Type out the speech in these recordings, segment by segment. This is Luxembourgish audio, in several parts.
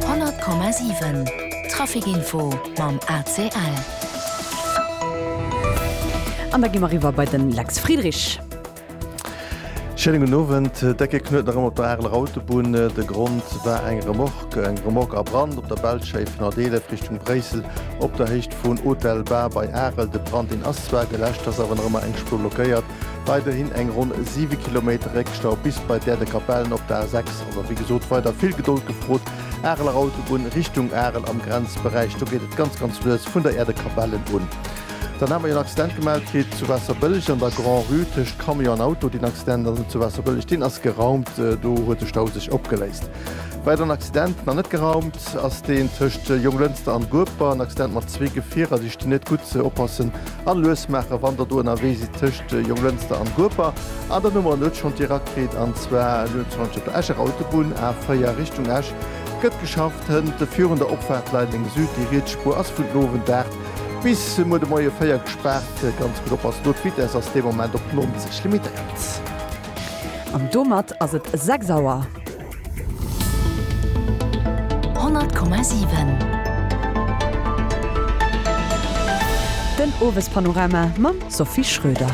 100,7 Trafic info mam ACL. An da gi mer eriwwer bei den Lex Friedrich. Schéinen gudden Owend. Decke Knuet nach ëmmer op der Areler Autobunn. De Grond war eng Remorque. Eng Remorque a Brand op der Belschei vun Adelef Richtung Bréissel op der Héicht vun Hotel Bar bei Arel. De Brand deen ass zwar geläscht, ass awer nach ëmmer eng Spur blockéiert. Weiderhin eng ronn 7 Kilometer Réckstau bis bei Däerdekapellen op der A6. Also wéi gesot, weider vill Gedold gefrot. Areler Autobunn Richtung Arel am Grenzberäich, do geet et ganz ganz lues vun der Äerdekapellen un. Dann hate mer jo en Accident gemellt kritt zu Waasserbëlleg an der Grand-Rue tëscht Camion an Auto. Deen Accident ass net zu Waasserbëlleg, deen ass geraumt. Do huet de Stau sech opgeléist. Weideren Accident, nach net geraumt, ass deen tëscht Jonglënster an Gueper. En Accident mat zwee Gefierer, déi stinn net gutt. Oppassen! An lues maachen, wann der do ënnerwee sidd tëscht Jonglënster an Gueper. An dann hu mer en huet schonn direkt kritt, an zwar lues schonn op der Escher Autobunn, A4 Richtung Esch, gëtt geschafft hënt virun der Opfaart Leideleng Süd. Déi riets Spuer ass vun den Owend 8 bis muer de Moie 4 gespaart. Ganz gutt oppassen do, d'Vitess ass dee Moment op 90 limitéiert. An domat ass et 6 Auer. 100,7 Den Owespanorama mam Sophie Schröder.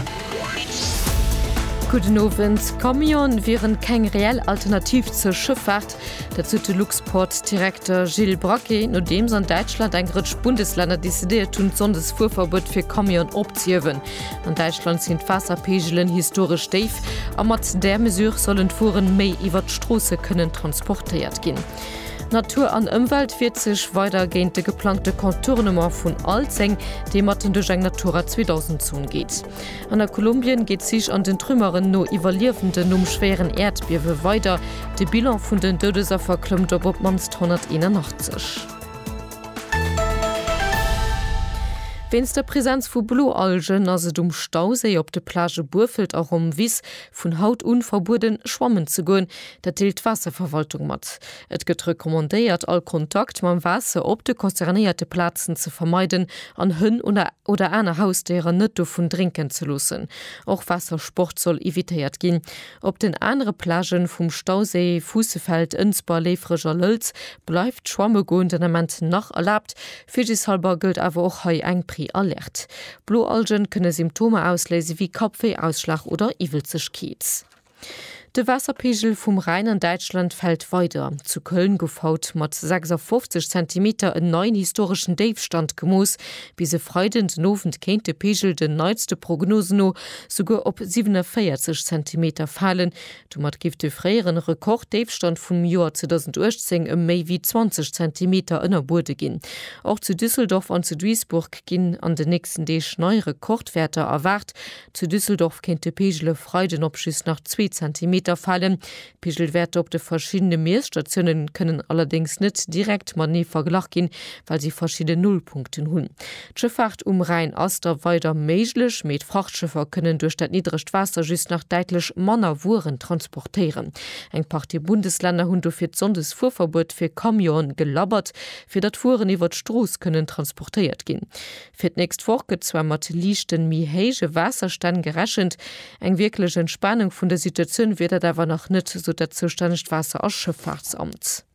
Gudden Owend. Camionë wieren keng reell Alternativ zur Schëffaart. Dat sot de Luxport-Direkter Gilles Braquet, nodeems an Däitschland eng Rëtsch Bundeslänner decidéiert hunn, d'Sonndesfuerverbuet fir Camionë opzehiewen. An Däitschland sinn d'Waasserpeegelen historesch déif a mat där Mesure sollen d'Wueren méi iwwert d'Stroosse kënnen transportéiert ginn. Natur an Ëmwelt wiert sech weider géint de geplangte Contournement vun Alzeng, dee matten duerch eng Natura 2000 Zon geet. An a Kolumbien geet d'Sich an den Trümmeren no Iwwerliewenden nom schwéieren Äerdbiewe weider. De Bilan vun den Doudesaffer klëmmt op op d'mannst 181. Wéinst der Präsenz vu Bloalgen ass et um Stauséi op de Plage Burfelt a Romvis vun haut un verbueden schwammen ze goen. Dat deelt d'Waasserverwaltung mat. Et gëtt recommandéiert all Kontakt mam Waasser op de concernéierte Plazen ze vermeiden an Hënn oder aner Hausdéieren net dovun drénken ze loossen. Och Waassersport soll evitéiert ginn. Op den anere Plagen vum Stauséi, Fuussefeld, Ënsber, Léifreg a Lëlz, bleift schwamme goen den Ament nach erlaabt. Virsichtshalber gëllt awer och hei eng Pre-Alerte. Blo Algen kënne Symptomer ausléise wéi Kappwéi, Ausschlag oder Iwwelzegkeet. De Waasserpeegel vum Rhäin an Däitschland fält weider. Zu Köln gouf haut mat 56 Zentimeter en neien historeschen Déifstand gemooss. Bis e Freiden den Owend kéint de Peegel den neitste Prognosen no souguer op 47 Zentimeter falen. Domat géif de fréieren Rekord-Déifstand vum Joer 2018 ëm méi wéi 20 Zentimeter ënner Buede ginn. Och zu Düsseldorf an zu Duisburg ginn an den nächsten Deeg nei Rekordwäerter erwaart. Zu Düsseldorf kéint de Peegel e Freiden op just nach zwee Zentimeter falen. D'Pigelwäerter op de verschiddene Miesstatioune kënnen allerdéngs net direkt matenee verglach ginn, well si verschidde Nullpunkten hunn. D'Schëffaart um Rhäin ass da weider méiglech, mee d'Frachtschëffer kënnen duerch dat niddregt Waasser just nach däitlech manner Wueren transportéieren. Eng Partie Bundeslänner hunn dofir d'Sonndesfuerverbuet fir Camionen gelabbert, fir datt Wueren iwwer d'Strooss kënnen transportéiert ginn. Fir d'nächst Woch gëtt zwar mat liichten, méi héije Waasserstänn gerechent, eng wierklech Entspanung vun der Situatioun wier dat awer nach net, sot dat zoustännegt Waasser a Schëffaartsamt.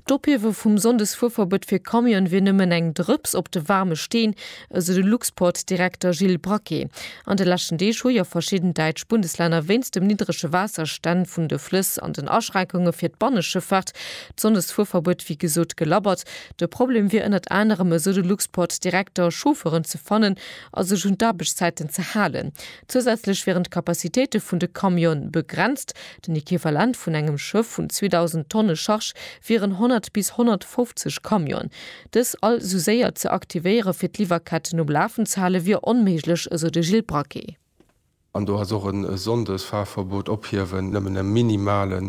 D'Ophiewe vum Sonndesfuerverbuet fir Camionen wier nëmmen eng Drëps op de waarme Steen, esou de Luxport-Direkter Gilles Braquet. An de leschten Deeg hu jo verschidden däitsch Bundeslänner wéinst dem niddrege Waasserstänn vun de Flëss an den Aschränkunge fir d'Banneschëffaart d'Sonndesfuerverbuet wéi gesot gelabbert. De Problem wier ënnert anerem, esou de Luxport Direkter, Chauffeuren ze fannen a sech un d'Aarbechtszäiten ze halen. Zousätzlech wieren d'Capacitéite vun de Camionë begrenzt. Den Equivalent vun engem Schëff vun 2.000 Tonne Charge wieren 100 bis 150 Camionen. Dës all esou séier ze aktivéiere fir d'Liwwerketten um Lafen ze hale wier onméiglech, esou de Gilles Braquet. An do ass och e Sonndesfahrverbot ophiewen nëmmen e minimale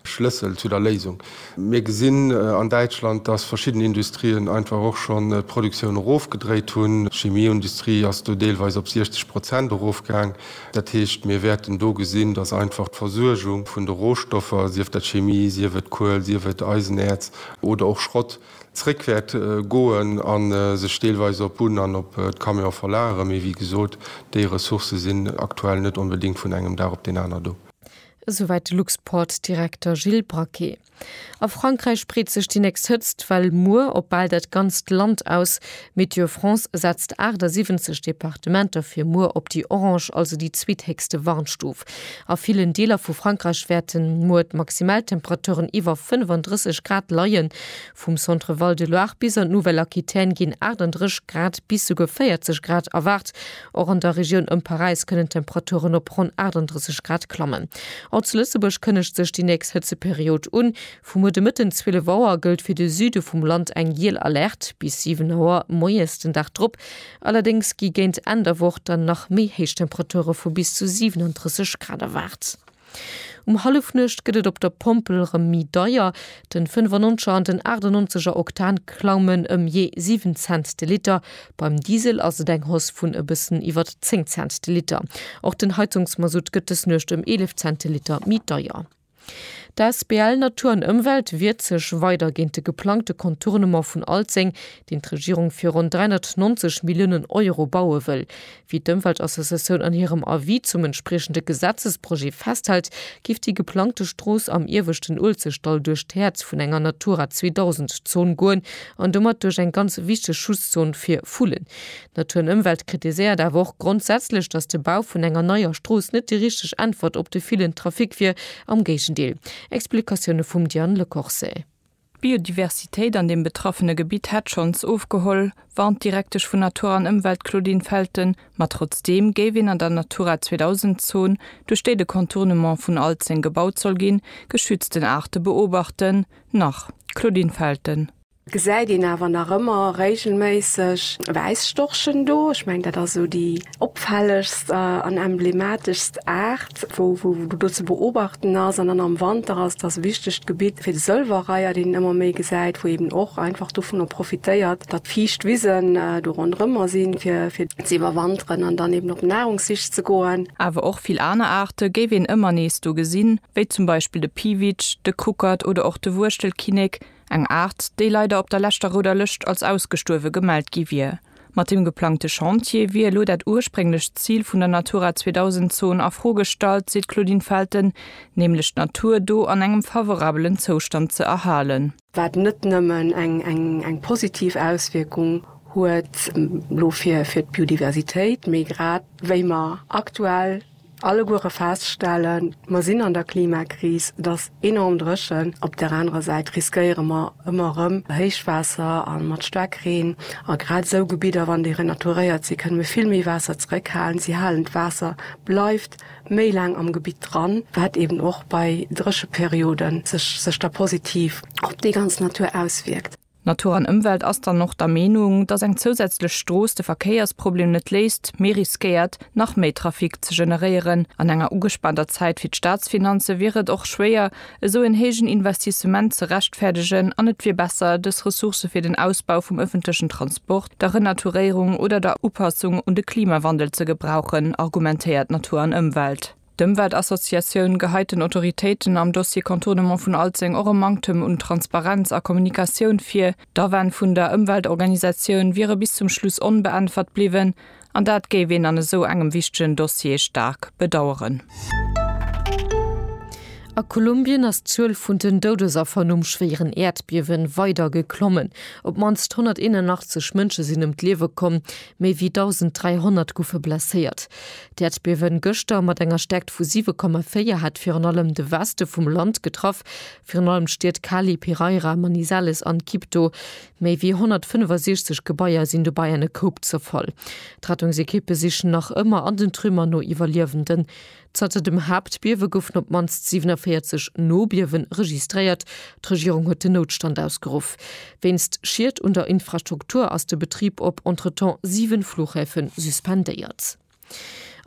Schlëssel zu der Léisung. Mir gesinn an Däitschland, dass verschidden Industrien einfach och schonn d'Produktioun erofgedréit hunn. D'Chemieindustrie ass do deelweis op 60 Prozent erofgaang. Dat heescht, mir wäerten do gesinn, dass einfach d'Versuergung vun de Rohstoffer, sief dat Chemie, sief et Kuel, sief et Eisenäerz oder och Schrott, zréck wäert goen a sech deelweis op Bunn an op d'Camion verlagere, mee wéi gesot, déi Ressourcë sinn aktuell net onbedéngt vun engem Dag op deen aner do. Esouwäit de Luxport-Direkter Gilles Braquet. A Frankräich breet sech déi nächst Hëtzt-Well muer op bal dat ganzt Land aus. Météo France setzt 78 Departementer fir muer op déi orange, also déi zweethéchste Warnstuf. A villen Deeler vu Frankräich wäerte muer d'Maximaltemperaturen iwwer 35 Grad leien. Vum Centre Val de Loire bis an d'Nouvelle-Aquitaine ginn 38 Grad bis souguer 40 Grad erwaart. Och an der Regioun ëm Paräis kënnen d'Temperaturen op ronn 38 Grad klammen. Och zu Lëtzebuerg kënnegt sech déi nächst Hëtzeperiod un. Vu muer de Mëtten 12 Auer gëllt fir de Süde vum Land eng giel Alerte bis 7 Auer moies den Dag drop. Allerdéngs gi géint Enn der Woch dann nach méi héich Temperature vu bis zu 37 Grad erwaart. Um Hallefnuecht gëtt et op der Pompel rem méi deier, den 95 er an den 98 er Oktan klaumen ëm jee 7 Cent de Liter, beim Diesel ass et eng Hausse vun e bëssen iwwert 10 Cent de Liter. Och den Heizungsmasutt gëtt des Nuecht ëm 11 Cent de Liter méi deier. D'asbl Natur an Ëmwelt wiert sech weider géint de geplangte Contournement vun Alzeng, deen d'Regierung fir ronn 390 Milliounen Euro baue wëll. Wéi d'Ëmweltassociatioun an hirem Avis zum entspriechende Gesetzesprojet festhält, géif déi geplangte Strooss am ieweschten Uelzechtdall duerch d'Häerz vun enger Natura 2000 Zon goen an domat duerch eng ganz wichteg Schutzzon fir Vullen. Natur an Ëmwelt kritiséiert awer och grondsätzlech, datt de Bau vun enger neier Strooss net déi richteg Äntwert op de villen Trafic wier, am Géigendeel. Explikatioune vum Diane Lecorse. D'Biodiversitéit an deem betraffene Gebitt hätt schonns ofgeholl, warnt d'Direktesch vun Natur an Ëmwelt Claudine Felten. Ma trotzdeem géif een an der Natura 2000 Zon, duerch déi de Contournement vun Alzeng gebaut soll ginn, geschützten Aarte beobachten. Nach d'Claudine Felten. Gesäit een awer nach ëmmer réigelméisseg Wäisstorchen do. Ech mengen, dat ass esou déi opfällegst an emblemateschst Aart, wou do ze beobachten ass. An dann am Wanter ass et ass e wichtegt Gebitt fir de Sëlwerreiher, deen een ëmmer méi gesäit, wou eeben och einfach dovunner profitéiert, datt fiicht Wisen do ronderëmmer sinn, fir ze iwwerwanteren an dann eeben op Nahrungssich ze goen. Awer och vill aner Aarte géif een ëmmer nees do gesinn, wéi zum Beispill de Piwitsch, de Kuckert oder och de Wuechtelkinnek. Eng Aart, déi leider op der leschter Rouder Lëscht als ausgestuerwe gemellt gi wier. Mat deem geplangte Chantier wier elo dat ursprénglecht Zil vun der Natura 2000 Zon a Fro gestallt, seet d'Claudine Felten, nämlech d'Natur do an engem favorabelen Zoustand ze erhalen. Wat net nëmmen eng positiv Auswierkung huet elo fir d'Biodiversitéit, mee grad wéi mer aktuell Alleguere feststellen, mer sinn an der Klimakris, et ass enorm dréchen, op där anerer Säit riskéiere mer ëmmer erëm Héichwaasser a mat Staarkreen. A grad esou Gebidder, wann déi renaturéiert sinn, kënne mir vill méi Waasser zeréckhalen, si halen d'Waasser, bleift méi laang am Gebitt dran, wat eeben och bei Drécheperioden sech da positiv op déi ganz Natur auswierkt. Natur an Ëmwelt ass dann och der Meenung, datt eng zousätzlech Strooss de Verkéiersproblem net léist, mee riskéiert, nach méi Trafic ze generéieren. An enger ugespaanter Zäit fir d'Staatsfinanze wier et och schwéier, esou en héijen Investissement ze rechtfäerdegen an et wier besser, dës Ressource fir den Ausbau vum ëffentlechen Transport, der Renaturéierung oder der Upassung un de Klimawandel ze gebrauchen, argumentéiert Natur an Ëmwelt. D'Ëmweltassociatioun geheit den Autoritéiten am Dossier Contournement vun Alzeng och e Manktem un Transparenz a Kommunikatioun vir. D'Awänn vun der Ëmweltorganisatioun wiere bis zum Schluss onbeäntwert bliwwen, an dat géif een an esou engem wichtegen Dossier staark bedaueren. A Kolumbien ass d'Zuel vun den Doudesaffer nom schwéieren Äerdbiewe weider geklommen. Op d'mannst 181 Mënsche sinn ëm d'Liewe komm, méi wéi 1.300 goufe blesséiert. D'Äerdbiewen gëschter mat enger Stäerkt vu 7,4 hat virun allem de Weste vum Land getraff, virun allem d'Stied Cali, Pereira, Manizales an Quibdó. Méi ewéi 165 Gebaier sinn dobäi an e Koup zerfall. D'Rettungsekippe sichen nach ëmmer an den Trümmer no Iwwerliewenden. Zanter dem Haaptbiewe goufen op d'mannst 47 Nobiewe registréiert. D'Regierung huet den Noutstand ausgeruff. Wéinst Schied un der Infrastruktur ass de Betrib op entretemps 7 Flughäfe suspendéiert.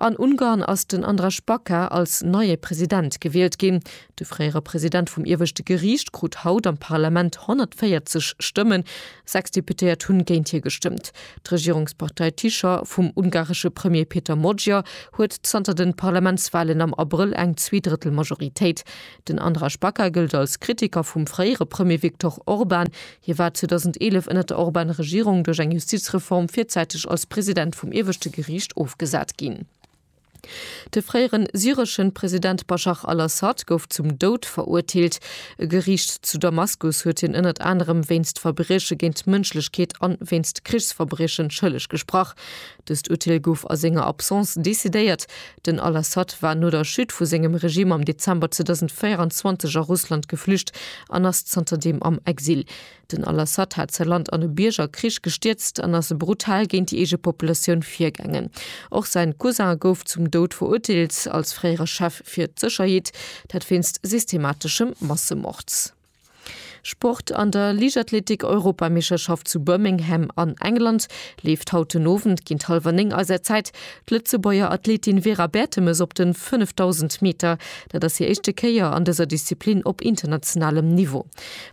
An Ungarn ass den Andras Baka als neie President gewielt ginn. De fréiere President vum ieweschte Geriicht krut haut am Parlament 140 Stëmmen, sechs Deputéiert hunn géint hie gestëmmt. D'Regierungspartei Tisza vum ungaresche Premier Peter Magyar huet zanter de Parlamentswalen am Abrëll eng Zweedrëttelmajoritéit. Den Andra Spaca gëllt als Kritiker vum fréiere Premier Viktor Orban. Hie war 2011 ënner der Orban-Regierung duerch eng Justizreform virzäiteg als President vum ieweschte Geriicht ofgesat ginn. De fréiere syresche President Baschar al-Assad gouf zum Doud verurteelt. E Geriicht zu Damaskus huet hien ënnert anerem wéinst Verbrieche géint d'Mënschlechkeet an wéinst Krichsverbriechen schëlleg gesprach. Dëst Urteel gouf a senger Absence decidéiert. Den al-Assad war no der Chute vu sengem Regime am Dezember 2024 a Russland geflücht an ass zanterdeem am Exil. Den al-Assad hat säi Land an e Biergerkrich gestierzt an ass brutal géint déi eege Populatioun virgaangen. Och säin Cousin gouf zum Doud verurteelt, als fréiere Chef fir d'Sécherheet, dat wéinst systemateschem Massemord. Sport, An der Liichtathletik-Europameescherschaft zu Birmingham an England leeft haut den Owend géint hallwer néng eiser Zäit d'Lëtzebuerger Athletin Vera Bertemes op de 5000 Meter. Dat ass hir éischte Kéier an dëser Disziplin op internationalem Niveau.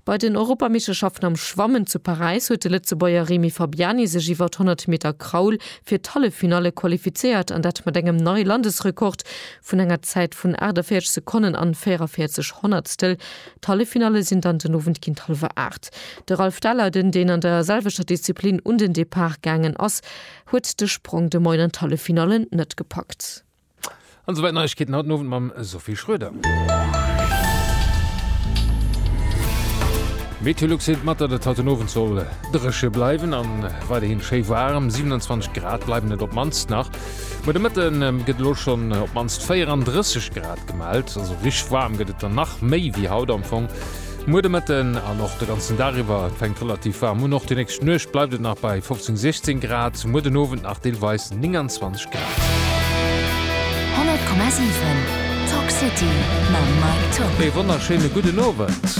Bei den Europameeschterschaften am Schwammen zu Paräis huet de Lëtzebuerger Remy Fabiani sech iwwer d'Honnert-Meter-Kraul fir d'Halleffinalle qualifizéiert an dat mat engem neie Landesrekord vun enger Zäit vun 48 Sekonnen an 44 Honnertstel. D'Halleffinalle sinn dann den Owend géint hallwer 8. De Ralph Daller, den deen an der selwechter Disziplin un den Depart gaangen ass, huet de Sprong de Moien an d'Halleffinalle net gepackt. An esouwäit Neiegkeeten haut den Owend mam Sophie Schroeder. Meteolux deelt mat, datt et haut den Owend soll dréche bleiwen a weiderhi schéi waarm, 27 Grad bleiwen et op d'mannst nach. Muer de Mëtte gëtt elo schonn op d'mannst 34 Grad gemellt, also richteg waarm gëtt et dann nach méi wéi haut am Fong. Muer de Mëtte an och de ganzen Dag iwwer, et fänkt relativ waarm un. Och déi nächst Nuecht bleift et nach bei 15, 16 Grad, muer den Owend nach deelweis 29 Grad. 100,7 Talk City mam Mike Tock. Ee wonnerschéine gudden Owend.